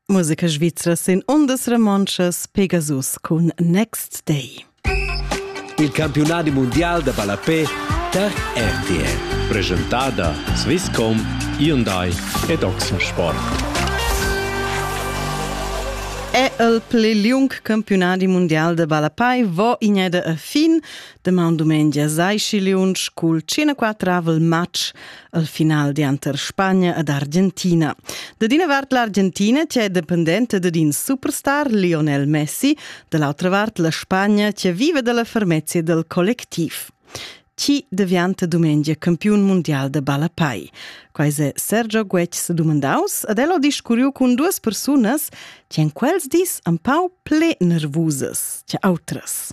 Musica svizra sin ondas romontschas Pegasus cun Next Day. Il campiunadi mundial da ballapé tar RTL. Presentada Swisscom, Hyundai ed Oxensport. È il pli liung campiunadi mundial de ballapai vo igneda a fin. Deman dumengia sai schi liunsch cul 54 match al final dianter Spagna ed Argentina. Da d'ina vart l'Argentina che è dependente da in superstar Lionel Messi, da l'autra vart la Spagna che vive dalla fermezia del collectiv. Chi deviante dumengia campiun mondial de balapai? Quais è Sergio Guetgs dumandaus ed elo discurriu cun duas persunas che in quels dis un pau ple nervusas che autras.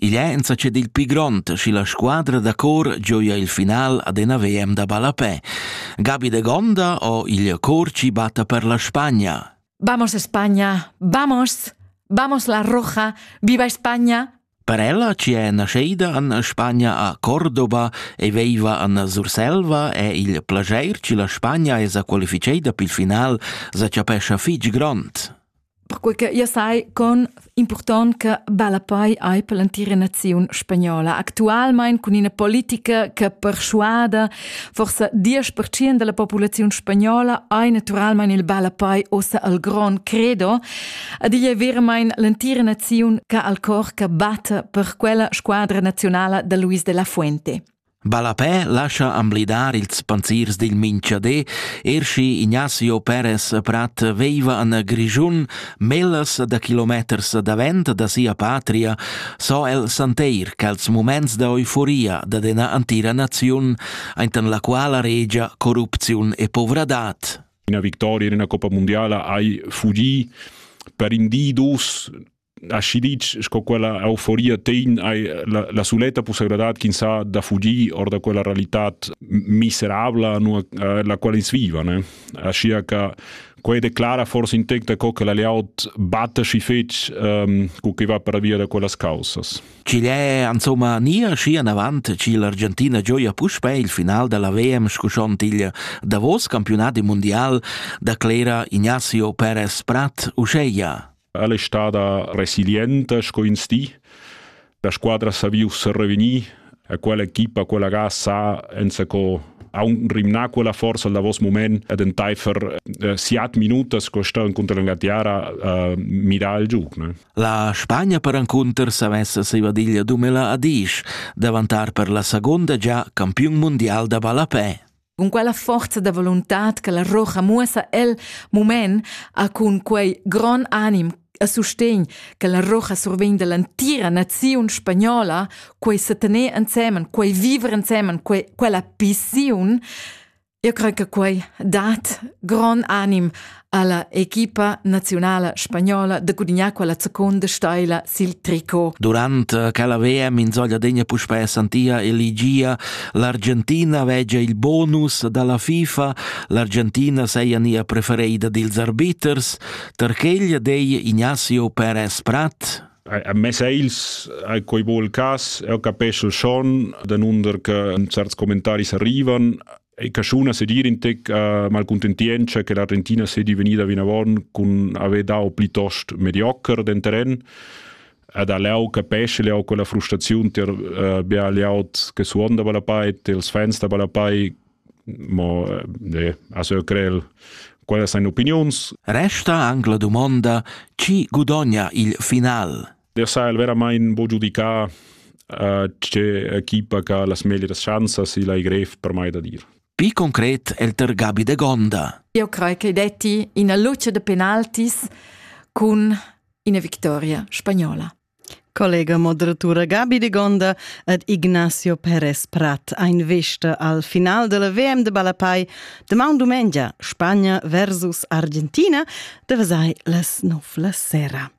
Igl è insatge dil pli grond, schi la squadra da cor gioia il final ad ina VM da ballapè. Gabi de Gonda o il cor ci batta per la Spagna. Vamos España, vamos, vamos la roja, viva España. Per ella ci è nasceida an Spagna a Cordova e veiva an Surselva e il plageir ci la Spagna esa qualificeida pil final sa chapescha fitg grond. perquei che io sai con important che Ballapei ei per l'entira naziun spagnola. Actualmein cun ina politica che perschuada forse 10% della popolazione spagnola ei naturalmein il Ballapei ossa al gran credo. Ad igl è veramente l'entira naziun che al cor che batte per quella squadra nazionale da Luis de la Fuente. Ballapè lascha amblidar ils panziers dil minchader, er schi Ignazio Perez Prat veiva an Grischun mellas da kilometers davent da sia patria, so el santeir ch'als muments da euforia da d'ena antira naziun aintan la quala regia corrupziun e povradad. Una victoria in una Coppa Mondiala hai fugì per in di dus aschi ditg sco quella euforia tegn hai la, la suletta possibilitad ch'ins ha da fugir or da quella realitat miserabla nua, eh, la quala ins viva ne? aschi che quei declara forse in tec da co che la layout batta schi fetg um, cu che va per via da quellas causas. Chile è insomma nia schi an avant ci l'Argentina gioia puspe il final della VM scuschont il davos campionat mundial da Clera Ignacio Perez Prat Uscheia. Ella è stata resilienta sco ins di. La squadra ha saviu revenir a quell'equipa, quella ga sa enzaco aunc rimnar quella forza al davos moment ed entaifer eh, siat minutas co sta contro la tiara eh, mirà il giug. Ne? La Spagna perencunter sa messa sevadiglia dumela a Dish, davantar per la seconda già campiun mondial da ballapè. Cun quella forza da voluntad che la rocha muossa el mument ha cun quei gron anim a sustegn che la rocha survegn dall'entira naziun spagnola, quei setener ensemen, quei viver ensemen, quei, quella pissiun, io crei che quei dat gron anim ha la equipa naziunala spagnola da gudignar quella seconda steila sil tricot. Durant che la VM insoglia degna puspè santia eligia l'Argentina vegia il bonus dalla FIFA. L'Argentina seia nia prefereida dils arbiters, Tarcheglia dei Ignacio Perez Prat a mes eils a quei vol cas, eu capescel schon, da nunder che certs commentaris arrivan, ei caschuna sedir in tec uh, malcontentientscha che l'Argentina sedi vegnida vinavon cun haver dau plitost mediocher den terren ad aleu capesce leu quella frustraziun ter uh, bia liaut che suonda balapai els fans da balapai mo eh, a so crel quella sein opinions resta anche la domanda chi gudogna il final der sa el veramain bo giudicar uh, tge equipa che ha las meglieras chanzas e l'hai grev per mai da dir. Pi concret è il ter Gabi de Gonda. Io credo che detti una luce de penaltis con una vittoria spagnola. Collega moderatura Gabi de Gonda ed Ignacio Perez Prat ein vista al final della VM de Balapai demand dumengia Spagna versus Argentina de vesai las nov la sera.